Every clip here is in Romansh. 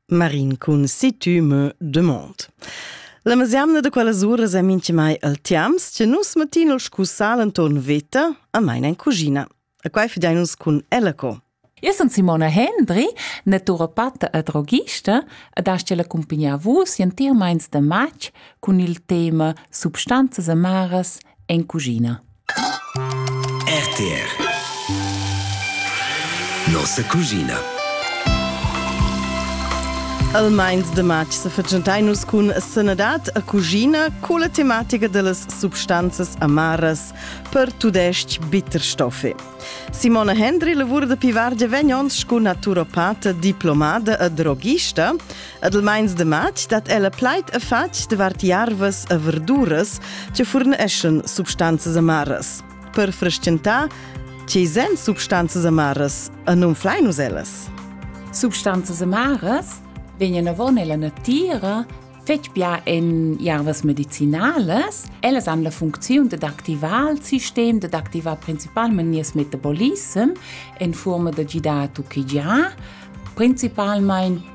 Marin cun si tu me demande. La mesiamna de quella sura è minchemai al tiams che nus matin scussal anton veta a meina in cugina. A quai fidainus cun ella co. Io sono Simona Hendri, naturopata e droghista ed hast la accompagnar vus entier meins de matg cun il tema Substanzas amaras en cugina. RTR Nossa cuschina Al meins de matg se fetgentai nus cun sanadad a cuschina con la tematica dellas substanzas amaras per tudesc bitterstoffe. Simona Hendry lavura da pivargia vegn ons sco naturopata, diplomada e drogista. Ad il meins de matg dat ella plaid e fatg davart jarvas e verduras che furneschan substanzas amaras. Per frestgentar Tgei sen substanzas amaras e non flein nus ellas? Substanzas amaras vegnan avon ella natira fetg bia en jarvas medicinales. Ellas han la funcziun dad activar il sistem, dad activar principalmente nies metabolism en forma da gidar a tuchigiar, principalmente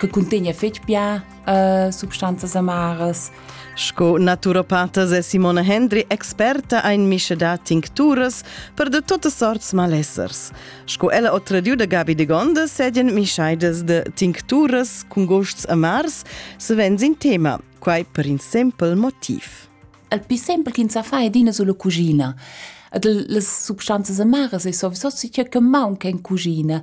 che cuntegna fetg bia uh, substanzas amaras. Sco naturopatas è Simona Hendry experta ein mische da tincturas per de tote sorts malessers. Sco ella ho tradiu da Gabi de Gonda sedien mischaidas de tincturas cun gosts amars savens in tema, quai per in simpel motiv. Il più semplice che sa fa è dina sulla cucina. Ed le substanze amare è sowieso sicher che manca in cucina.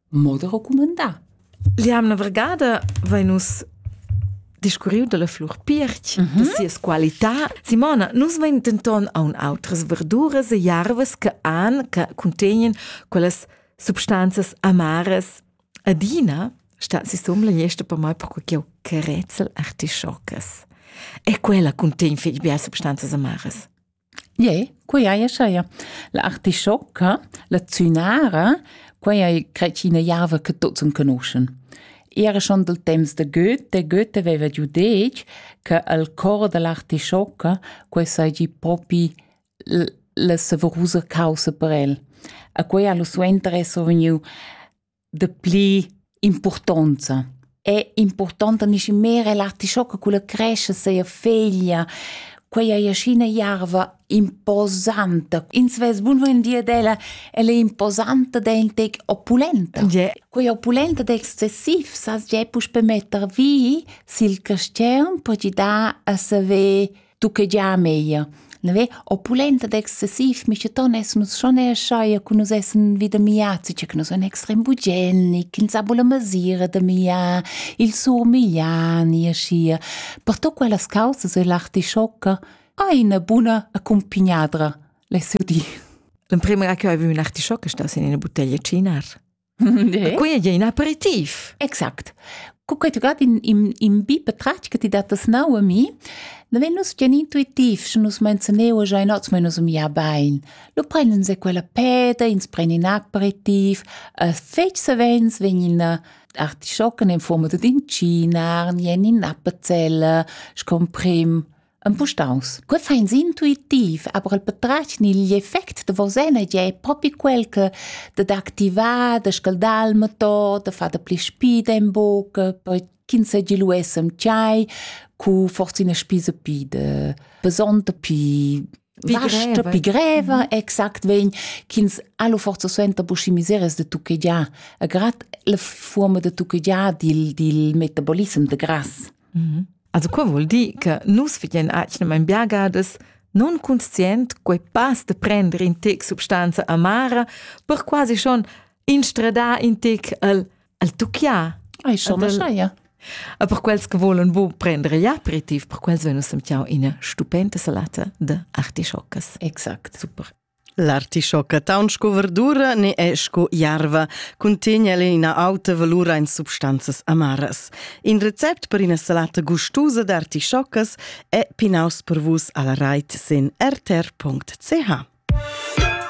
moda recumandà. L'jamna vergada vai nus discurriu dalla flur pirch mm -hmm. da sias qualità. Simona, nus vein denton aun outras verduras e jarvas che han che contegnen quellas substanzas amaras. Adina stan si sum la niesta per mai perché ch'jeu carezzel artischoccas. E quella contegn fetg bia substanzas amaras. Ie, quei ei aschia. La artischocca, la zünara, quei ei cret ch'ina java che tuts enconuschen. Era schon dal temps da Goethe, Goethe veva giu detg che al cor dell'artischocca quei seigi propi la saverusa caussa per el. E quei ha lu suenter esser vegniu de pli importanza è importanta nisci me relati scho che quella cresce seia feglia quella iascina jarva imposanta ins ves bun ven dir della elle imposanta del tec opulenta yeah. quella opulenta de excessiv sas je puspe metter vi sil castern per ti da a saver tu che gia meglio. Neve, opulenta ed excessiv, micheton es nus schon erschaia cu nus essen vida miazzi, che nus en extrem bugenic, in sabula mesira da mia, il surmigliani, aschia. Per to quellas causas e l'artischocca, hai una buna accompagnadra, le seu di. L'emprima che avevi un artischocca sta in una bottiglia cinar. Quei ei in aperitiv. Exact. Cu quei tugat in, in, in bi patratg che ti dattas nau a mi, da vegn nus gian intuitiv, sche nus menzioneu già in oz, ma nus am ja bein. Lu prenden se quella peda, ins pren in aperitiv, e fetg savens vegn in artischocken in forma dad in cinar, ni en in appenzell, sco prim Empustaus. Que fa ins intuitiv, aber el patratg ni igl effect da vos energia è propi quel che da d'activar, da scaldar il motor, da far da pli spida in buca, poi ch'ins segi lu essem tgei, cu forse ina spisa pi de besonta pi stoppi greva exact vegn ch'ins allo forza suenter buschi miseries de tucchegiar a grad la forma de tucchegiar dil dil metabolism de grass mhm. also quo vuol dir che nus vegien acnem ein biagades non conscient quei pass de prender in tec substanza amara per quasi schon instradar in tec al al tucchia ai schon das ja a per quels che volen bu prendere ja aperitiv per quels venus sem ciao ina stupenda salata de artischoccas exakt super L'artischocca taun sco verdura ne è sco jarva, cuntegna le ina auta valura in substanzas amaras. In recept per ina salata gustusa d'artischoccas è pinaus per vus alla reit sin rtr.ch.